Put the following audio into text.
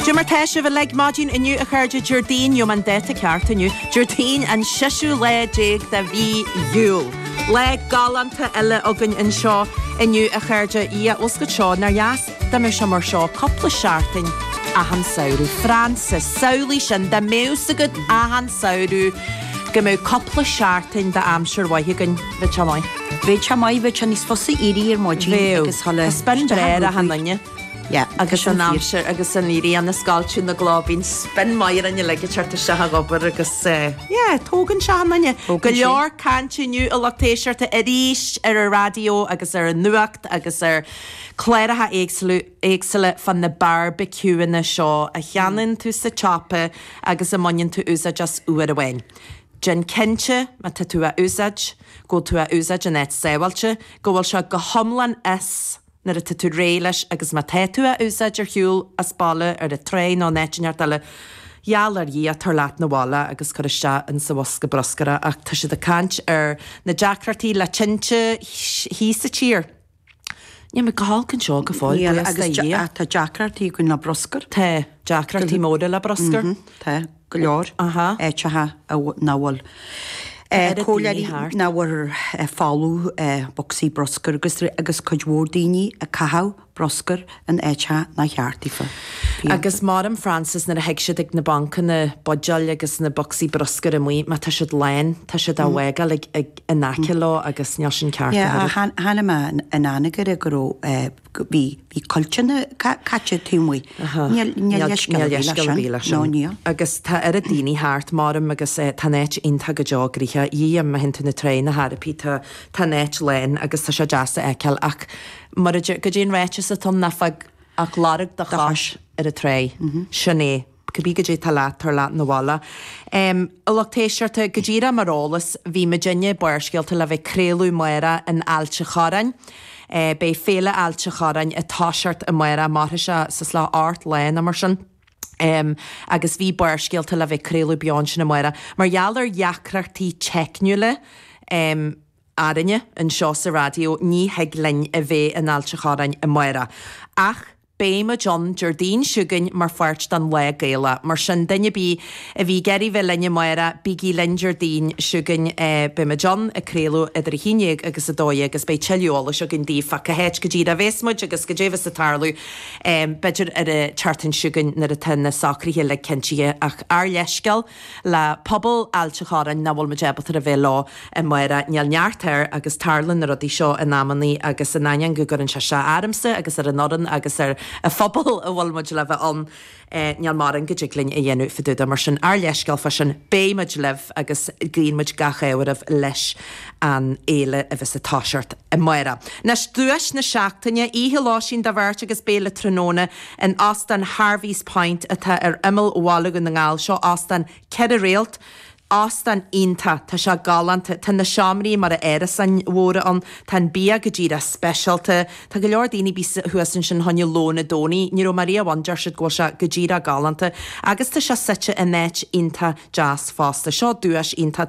Goidé mar tá sibh uilig maidin inniu a chairde, Déardaoin, gheobhaidh mé an dáta ceart inniu, Déardaoin an seiseadh lá déag de mhí Iúil. Lá galánta eile againn anseo inniu a chairde, Ie os go deo, nár dheas dá mbeadh sé mar seo cupla seachtain achan samhradh. Frances, samhlaigh sin, dá mbeadh 's agat achan samhradh go mbeadh cupla seachtain d'aimsir mhaith againn, bheadh sé maith. Bheadh sé maith, bheadh sé níos fusa éirí ar maidin agus tá spion breá ar achan duine. Yeah agus an aimsir agus an ghrian ag scoilteadh na gcloch, bíonn spion maith orainn uilig ag teacht isteach ag obair agus eh. Yeah tógann sé an duine. Go leor cainte inniu a lucht éisteachta arís ar an raidió agus ar an nuacht agus ar cláracha éagsúla fá na barbecueanna seo a cheannaíonn tú sa tsiopa agus a mbaineann tú úsáid as uair amháin. Déan cinnte, má tá tú á úsáid, go bhfuil tú á úsáid in áit sábháilte, go bhfuil sé go hiomlán as. Nuair atá tú réidh leis agus má tá tú á úsáid ar shiúl, as baile, ar an tráigh nó in áit ineacht eile, gheall ar Dhia, tabhair leat 'na bhaile agus cuir isteach in sa bhosca bruscair é ach tá siad ag caint ar na deacrachtaí le tinte thíos sa tír. Níl muid go holc anseo go fóill, buíochas le Dhia. Níl, agus tá deacrachtaí againn le bruscar. Tá, deacrachtaí móra le bruscar. Tá. go leor, áiteacha nach bhfuil cúl eile thart nach bhfuil ar fáil ó bhocsaí bruscair agus agus cuid mhór daoine ag caitheamh bruscair in áiteacha nár cheart daofa. Agus maram Frances nuair a thig siad ag na bancanna buidéal agus na bocsaí bruscair amuigh má tá siad lán, tá siad á bhfágáil ag ag in aice leo agus níl sin ceart ach oiread. yeah, chonaic mé in Anagaire go raibh eh, Bhí cuilteanna caite taobh amuigh. Níl leithscéal ar bith leis sin. No níl. Agus tá oiread daoine thart, maram, agus tá an áit iontach go deo gnaitheach. A Dhia, má théann tú 'na trá nó áit ar bith, tá tá an áit lán agus tá sé deas a fheiceáil. Ach mar a deir, goidé an ráiteas atá ann, ná fág ach lorg do chois ar an tráigh. Sin é. Cibé goidé atá leat, tabhair leat 'na bhaile. A lucht éisteachta, go díreach mar eolas, bhí muidinne, Barrscéalta, le bheith ag craoladh amárach in Ailt an Chorráin. Beidh Féile Ailt an Chorráin ag toiseacht amárach, mairfidh sé seacht lá ocht lá nó mar sin. Agus bhí Barrscéalta le bheith ag craoladh beo ansin amárach. Mar gheall ar dheacrachtaí teicniúla, orainne, anseo sa raidió, ní thig linn a bheith in Ailt an Chorráin amárach. Ach. Beidh muid ann Déardaoin seo chugainn mar pháirt den Lá Gaelach, mar sin duine ar bith a bhí ag iarraidh bheith linn amárach, bígí linn Déardaoin seo chugainn. Beidh muid ann ag craoladh idir 11 agus 12 agus beidh tuilleadh eolais againn daoibh fá cá háit go díreach a bhéas muid agus goidé bhéas ag tarlú, b'fhéidir ar an tseachtain seo chugainn nuair atá na socraithe uilig cinntithe, ach ár leithscéal. le pobal Ailt Chorráin nach bhfuil muid ábalta a bheith leo i amárach. Níl neart air agus tarlann na rudaí seo in amannaí agus in ainneoin go gcuireann sé as domsa agus don fhoireann agus don phobal a bhfuil muid le bheith ann níl mórán go dtig linn a dhéanamh fá dtaobh de. Mar sin ár leithscéal fá sin. Beidh muid libh agus guíonn muid gach ádh oraibh leis an fhéile a bheas ag toiseacht amárach. Anois duais na seachtaine, Oíche Lóistín do bheirt agus béile tráthnóna In Óstán Harvey's Point atá ar imeall Bhaile Dhún na nGall, seo óstán ceithre réalt, óstán iontach, tá sé galánta, tá na seomraí mar a bheadh árasáin mhóra ann, tá an bia go díreach speisialta, tá go leor daoine a bhí thuas ansin fá choinne lón Dé Domhnaigh, ní raibh mé riamh ann, deir siad go bhfuil sé go díreach galánta, agus tá sé suite in áit iontach deas fosta. Seo duais iontach.